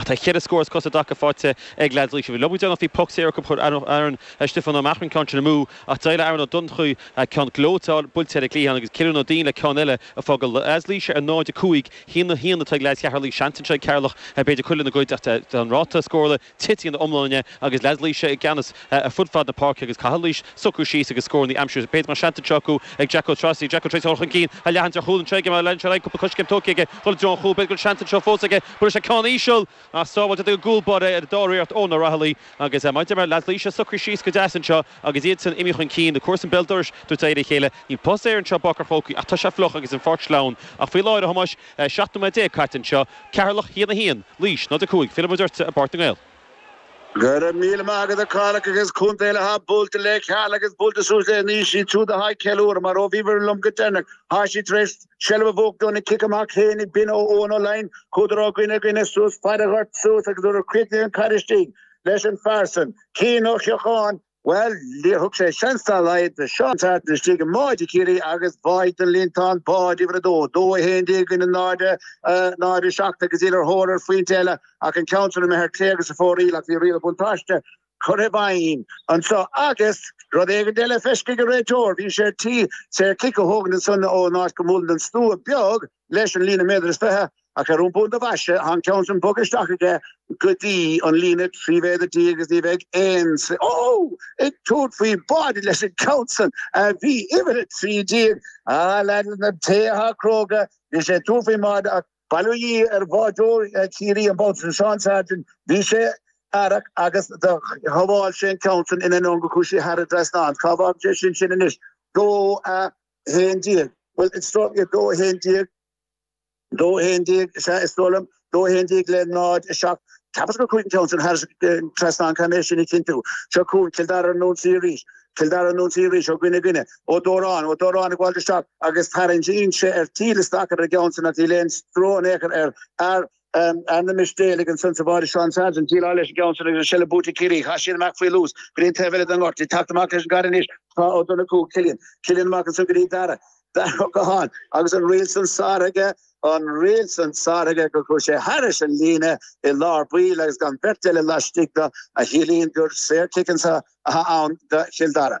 Tá a cheithre scór as cosa i dtaca faighte ag leads Laoise bhí liom go déanach bhí poc saor acu chuir Aaron Stiofán Ó Meachair an ceann sin amú ach d'éirigh Aaron Ó Donnchadha ceann gleoite buailte ar an gcliathán agus Ciarán Ó Duinn le ceann eile ag fágáil leads Laoise ar 0-5 a haon a haon atá ag leads Cheatharlach. Seans anseo ag Ceatharlach b'fhéidir cur lena gcuid ach tá an ráta scórála tite ina iomláine agus leads Laoise i gceannas ar fud fad na páirce agus caithfidh leads socrú síos agus scór a aimsiú. B'fhéidir go mbeidh seans anseo acu ag Jack Ó Treasaigh Jack Ó Treasaigh a chur chun cinn a leathanaigh ar chúl an tréigthe mar a lean sé ar aghaidh coiscéim tógtha aige dhul i dtreo an chúil. B'fhéidir go raibh seans anseo fós aige Bhuail sé ceann íseal ach sábháilte ag an gcúl báire ar dáiríreacht ó na Rathallaigh agus maidir le leads Laoise socraithe síos go deas anseo agus iadsan imithe chun cinn na comharsain béal dorais ag tabhairt aghaidh ar a chéile níl puth as aer anseo i bPáirc an Chrócaigh ach tá sé fliuch agus an pháirc sleamhain ach faoi láthair a Thomáis 17 nóiméad caite anseo Ceatharlach 1 1 Laois 0 5 fillimid ort i bPáirc na nGael. Go raibh míle maith agat a Chárthaigh agus contae eile atá buailte le cheal agus buailte suas le Laois iad siúd atá ag ceiliúradh mar ó bhíobhair liom go deireanach tá siad tar éis seilbh a bhuacaint óna gcic amach féinig b'in é Eoin Ó Leidhin chuadar ó dhuine go duine suas fad an ghoirt suas agus nuair a chríochnaigh an caid istigh leis an fear san Cian Ó Ceocháin Bhuel, níor thug sé seans dá laghad do Sargent istigh i mbáide Chiarraí agus bháigh don líontán bád uimhir a dó, 2:11 in aghaidh 0:07, agus iad ar thóir ar phointe eile ach an ceann san imithe ar clé agus ar fóraoil ach bhí riail an bhuntáiste curtha i bhfeidhm anseo agus rud éigin eile feiscithe ag an réiteoir. Bhí sé ar tí saor cic a thógaint ansan ón áit go mbuaileann an stua beag leis an líne méadar is fiche ach ar iompú do bhoise tháinig an ceann san bog isteach aige go dtí an líne trí mhéadar déag agus ní bheidh aon saoi ó! ag tabhairt faoi bhád leis an ceann san a bhí imithe trí díog a leagan an tae a thá cróga bhí sé ag tabhairt faoin mbád ach bailíodh a dhíth ar bháideoir Chiarraí an babhta sin Seán Sargent bhí sé aireach agus do shábháil sé an ceann san in ainneoin go chuaigh sé thar an dtrasnán cá bhfágann sé sin sinn anois? dó a 11. is dóigh liom 2 11, dó a haon déag, is ea is dóigh liom, dó a haon déag le 0 7. Cheapas gur chuaigh an ceann sin thairis an trasnán, caithfidh mé sin a chinntiú. Seo chugainn, Cill Dara ar an ionsaí arís, Cill Dara ar an ionsaí arís, Ó Goin i gcoinne, Ó Dóráin, Ó Dóráin ag gabháilt isteach agus tarraingíonn sé ar Tíl, is tacair ar an gceann sin ach níl aon stró in aon chor ar fhear Ainmnigh Dale ansan sa bhád is Seán Sargent déileáil leis an gceann sin agus an seilbh buaite ag Ciarraí. Chaith sé amach faoi luas. Go dtí an taobh eile den ghort. Ag teacht amach leis an gcaid anois tá Ó Donnchú, Cillian, Cillian amach ansan go dtí Dara, Dara Ó Catháin agus an riail san sáraithe aige, an riail san sáraithe aige gur chuaigh sé thairis an líne i lár baill agus gan beirt eile laistiar de a chiallaíonn gur saor cic ansan atá ann do Chill Dara.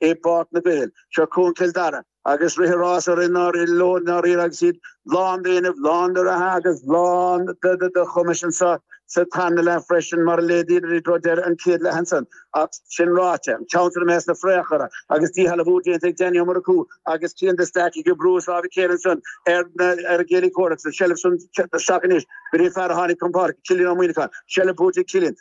i bPáirc na gCaol. Seo chugainn Chill Dara agus rith an rás leo dáiríre agus iad lán d'fhuinneamh, lán de ratha agus lán de chumas anseo sa tarna leath freisin mar a léiríodar i dtreo deireadh an chéad leath ansan. Ach sin ráite, an ceann san imithe sna fraochara agus díshealbhú déanta ag Danny Ó Murchú agus Cian de Staic ag oibriú as lámha a chéile ansan ar an gcéilí comhraic, seilbh san isteach anois go dtí an fear a tháinig chun páirce, Cillian Ó Muíneacháin. Seilbh buaite ag Cillian.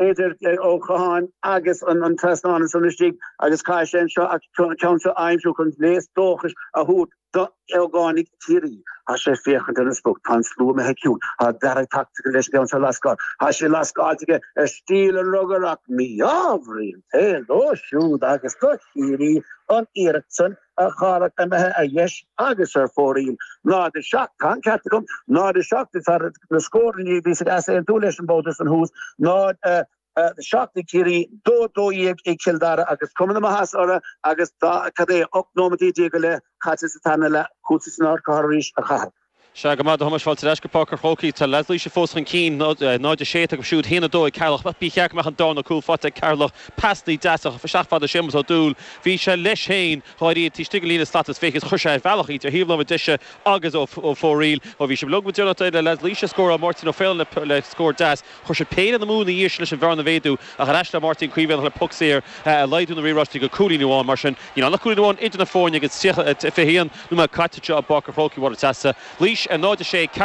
idir Ó Catháin agus an trasnán ansan istigh agus caithfidh sé anseo an ceann seo a aimsiú chun léas dóchais a thabhairt d'ógánaigh Chiarraí. Tá sé ag féachaint ar an sprioc, tá an slua imithe ciúin, tá beartaithe aige an an gceann seo lascáil. Tá sé lascáilte aige ar stíl an rugair ach mí-ámharaí an tsaoil dó siúd agus do Chiarraí an iarracht san. an chaid imithe ar dheis agus ar fóraoil. 0, 7, Tá an ceart agam. 0, 7, Is fear na scóranna a bhí ag easaontú leis an mbord ansan thuas. 0, 7, ag Ciarraí, 2, 12, ag Cill Dara agus cuma na maitheasa orthu agus tá, cad é, 18 nóiméad go leith caite sa tarna leath, chughat san ardchathair arís, a Chathail. Sea, go maith, a Thomáis, fáilte ar ais go Páirc an Chrócaigh. Tá leads Laoise fós chun cinn, 0, 6 acu siúd, 1, 2 ag Ceatharlach. Ba cheart go mbeadh an darna cúl faighte ag Ceatharlach, pas an-deas isteach fada Séamus Ó Dúill, bhí sé leis féin, dháiríre, istigh den líne slat is fiche is chuir sé ar bhealach í ar thaobh láimhe deise agus ar fóraoil, óna bhí sibh liom go deireanach, d'éirigh le leads Laoise scóráil, Máirtín Ó Faoláin le scór deas. Chuir sé péire ina ndiaidh leis an bhearna a mhéadú ach ar ais le Máirtín Caomhánach le puc saor a laghdú na riaráistí go cúilín amháin. Mar sin, níl ach cúilín amháin idir na foirne ag an 21ú nóiméad caite anseo i bPáirc an Chrócaigh, a Mháire Treasa. Laois ar 0-6 ag Ceatharlach.